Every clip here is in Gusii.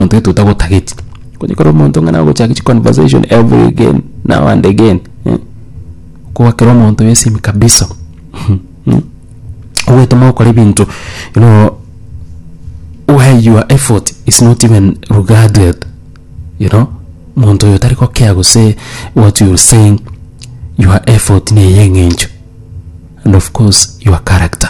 omonto gete otagotageti, okonye kore omonto ng'a nagochaka chi conversation every again now and again eh, koba kera omonto bwesinimi kabisa mh, ogwetoma gokora ebinto you know where your effort is not even regarded you know, omonto oyo tari gokea gose what you saying, your effort neye eng'encho and of course your character.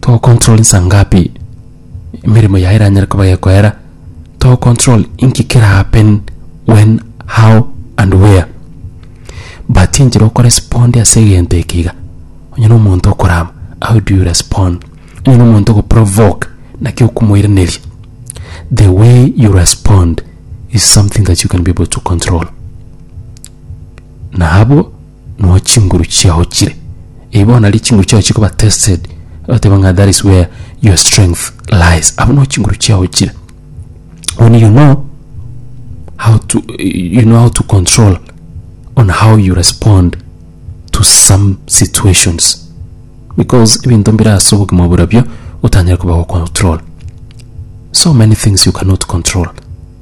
togocontrol nsa ngapi emeremo yaye eranyare koba gekoera togocontrol inki kera happen when how and where but enchera okoresponde ase egento eke iga onye na omonto okorama how do you respond onye na omonto ogoprovoke naki okomoiraneria the way you respond is something that you can be able to control na abwo no chinguru chiao chire Eh, bono nario chinguru chiao chikoba tested oteba ng'a that is where your strength lies abo no chinguru chiao chire when you know how to you know how to control on how you respond to some situations because ebinto mbire ase obogima bora bio otanyare koba go control so many things you cannot control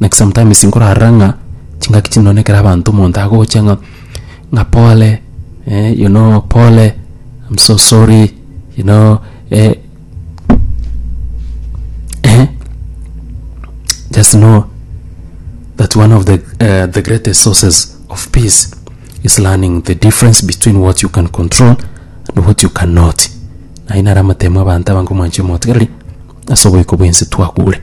Like sometimes nkorara ng'a chingaki chinde one ekero abanto omonto agocha ng'a ng'a pole eh, you know pole, I'm so sorry, you know eh, eh, just know that one of the uh, the greatest sources of peace is learning the difference between what you can control and what you cannot naye nare amatemo abanto abange omwanche omotigareri ase oboiko bwensi twakure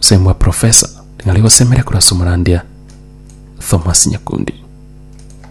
Seng'wa Professor, nari gosemire korwa ase omorandia Thomas Nyakundi.